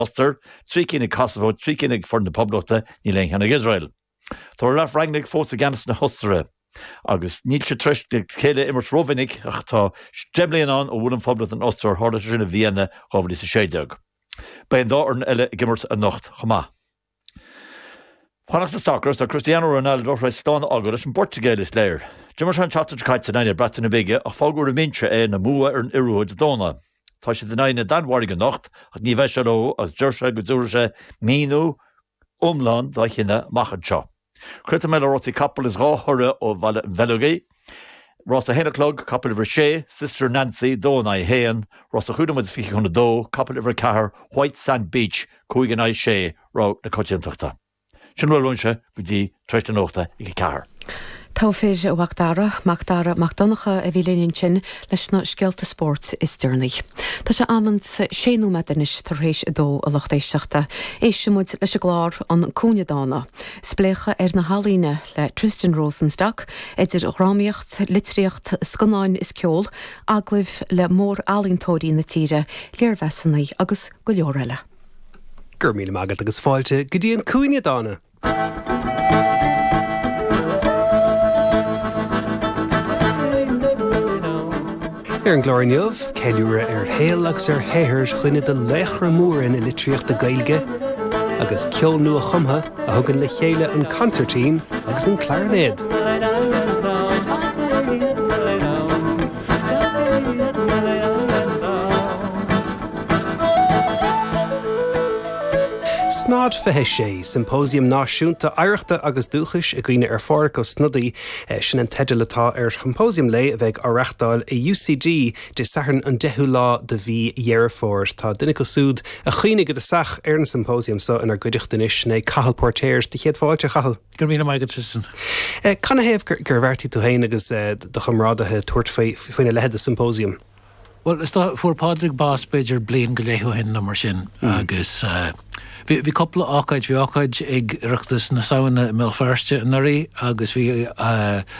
Ostair, trí cinn ag Kosovo, trí cinn ag Foireann na Poblachta, níl aon cheann ag Iosrael. Tá Ralf Rangnick fós i gceannas na hOstaire. Agus níl siad tar éis a chéile a imirt rómhinic ach tá deich mbliana ann ó bhuail an Phoblacht an Ostair, tharla sé sin i Vienna 2016. Beidh an dá fhoireann eile ag imirt anocht chomh maith. Fanacht le sacar is tá Cristiano Ronaldo tar éis slán a fhágáil leis an bPortaingéil, is léir. D'imir sé an tseachtain seo caite in aghaidh na Breataine Bige ach fágadh ar an mbinse é ina mbua ar an Iorua Dé Domhnaigh, tá siad in aghaidh na Danmhairge anocht ach ní bheidh sé leo agus deir sé go dtabharfaidh sé míniú iomlán dá chinneadh amach anseo. Críochnóidh mé le rásaí capall is dhá thoradh ó Bhaile an Bheileogaigh, rás a haon a chlog, capall uimhir a sé, Sister Nancy, dó in aghaidh a haon, rás a cúig nóiméad is fiche chun a dó, capall uimhir a ceathair, White Sand Beach, cúig in aghaidh sé, rogha na coitiantachta. Sin a bhfuil uaimse go dtí tar éis na nuachta ag a ceathair. Togha fir a Mhacdara, Macdara Mac Donncha a bhí linn ansin, leis na scéalta spóirt is deireanaí. Tá sé ionann is 6 nóiméad anois tar éis a dó, a lucht éisteachta. Éistfimid leis an gclár An Cúinne Dána, spléachadh ar na healaíona le Tristan Rosenstock, idir dhrámaíocht, litríocht, scannáin is ceol, agallaimh le mór-ealaíontóirí na tíre, léirmheasanna agus go leor eile. Go raibh míle maith agat agus fáilte go dtí An Cúinne Dána! Ar an gclár inniu, ceiliúradh ar shaol agus ar shaothar dhuine de laochra móra na litríochta Gaeilge, agus ceol nua-chumtha a thugann le chéile an consairtín agus an clairinéad. Snad 26, Siompóisiam Náisiúnta Oidhreachta agus Dúchais i gCuimhne ar Phádraig Ó Snodaigh, sin an teideal atá ar shiompóisiam lae a bheidh á reáchtáil i UCD Dé Sathairn an 10ú lá de mhí Dheireadh Fómhair. Tá duine acu súd a chuimhnigh i dtosach ar an siompóisiam so inar gcuideachta anois, sin é Cathal Póirtéir. Do chéad fáilte, a Chathail. Go raibh míle maith agat, Tristan. Canathaobh gur bheartaigh tú féin agus do chomrádaithe tabhairt faoina leithéid de siompóisiam? Bhuel, is dócha, fuair Pádraig bás b'fhéidir bliain go leith ó shin nó mar sin agus bhí cúpla ócáid, bhí ócáid ag Oireachtas na Samhna i mBéal Feirste anuraidh agus bhí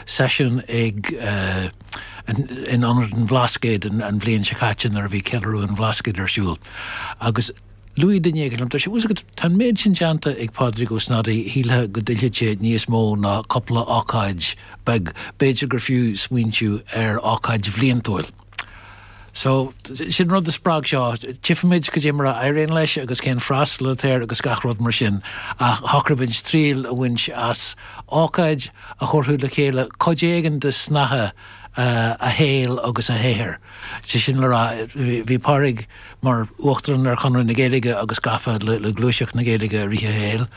seisiún ag in Ionad an Bhlascaoid an bhliain seo caite nuair a bhí Ceiliúradh an Bhlascaoid ar siúl agus luaigh duine éigin, bhuel, tá a fhios agat, tá an méid sin déanta ag Pádraig Ó Snodaigh, shílfeá go dtuillfeadh sé níos mó ná cupla ócáid beag, b'fhéidir gur fiú smaointiú ar ócáid bhliantúil. So, sin rud a spreag seo, tchifimid cad é mar a éiríonn leis agus cén freastal atá air agus gach rud mar sin ach shocraigh muid triail a bhaint as ócáid a thabharfadh le chéile cuid éigin de shnáithe a shaoil agus a shaothair. Sé sin le rá, bhí Pádraig. mar Uachtarán ar Chonradh na Gaeilge agus gafa le gluaiseacht na Gaeilge i rith a shaoil.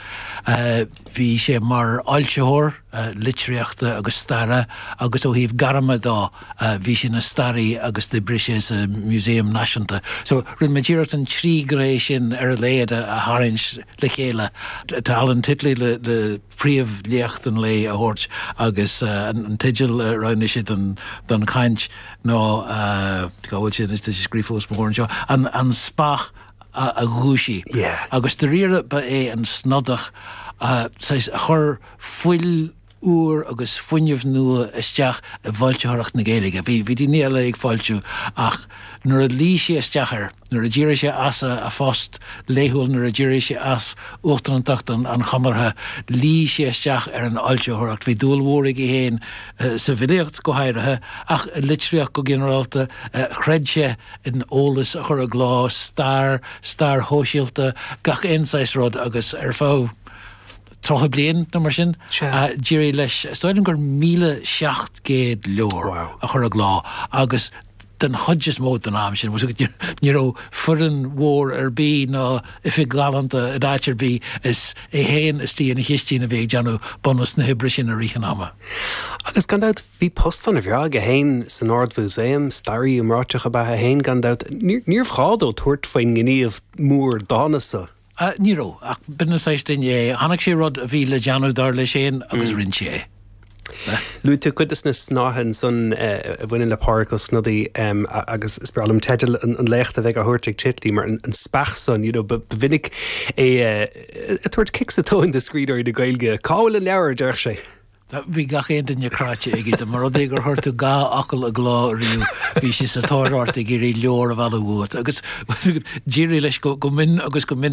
Bhí sé mar fhoilsitheoir litríochta agus staire agus ó thaobh gairme de bhí sé ina staraí agus d'oibrigh sé sa Museum Naisiúnta. So rinne muid iarracht an trí ghné sin ar a laghad a tharraingt le chéile. Tá Alan Titley le. príomh léacht an lae a thabhairt agus an teideal a roghnaigh sé don chaint ná, cá bhfuil sé anois tá sé scríofa os mo chomhair anseo, An Speach a Dhúisigh agus dairíre ba é an Snodach saghas a chur fuil úr agus fuinneamh nua isteach i bhfoilsitheoireacht na Gaeilge. Bhí daoine eile ag foilsiú ach nuair a luí sé isteach ar. nuair a d'éirigh sé as a phost laethúil Nuair a d'éirigh sé as uachtarántacht an Chonartha luigh sé isteach ar an fhoilsitheoireacht Bhí dúil mhór aige féin sa bhfilíocht go háirithe ach i litríocht go ginearálta Chreid sé in eolas a chur i gcló, stair, stair shóisialta, gach aon saghas rud agus ar feadh tríocha bliain nó mar sin d'éirigh leis is dóigh liom gur míle seacht gcéad leabhar a chur i gcló agus den chuid is mó den am sin, ní raibh foireann mhór ar bith ná oifig ghalánta in áit ar bith, is é féin istigh ina chistin a bhí ag déanamh bunús na hoibre sin i rith an ama. Agus gan dabht, bhí post ana bhreá aige féin san Ard-Mhúsaem, staraí iomráiteach ab ea é féin gan dabht, níorbh ghá dó tabhairt faoin ngníomh mór dána san. Ní raibh. Ach b'in an saghas duine é. Chonaic sé rud a bhí le déanamh, dar leis féin, agus rinne sé é. Luaigh tú cuid de na snáithe ansan a bhaineann le Pádraig Ó Snodaigh agus is breá liom teideal an léachta a bheidh á thabhairt ag Titley mar an speach san. Ba mhinic é ag tabhairt cic sa tóin do scríbhneoirí na Gaeilge. Cá bhfuil an leabhar, a déarfadh sé. Bhí gach aon duine cráite aige dá mba rud é gur chuir tú dhá fhocal i gcló riamh, bhí sé sa tóir ort ag iarraidh leabhar a mhealladh uait. Agus d'éirigh leis go mion agus go minic.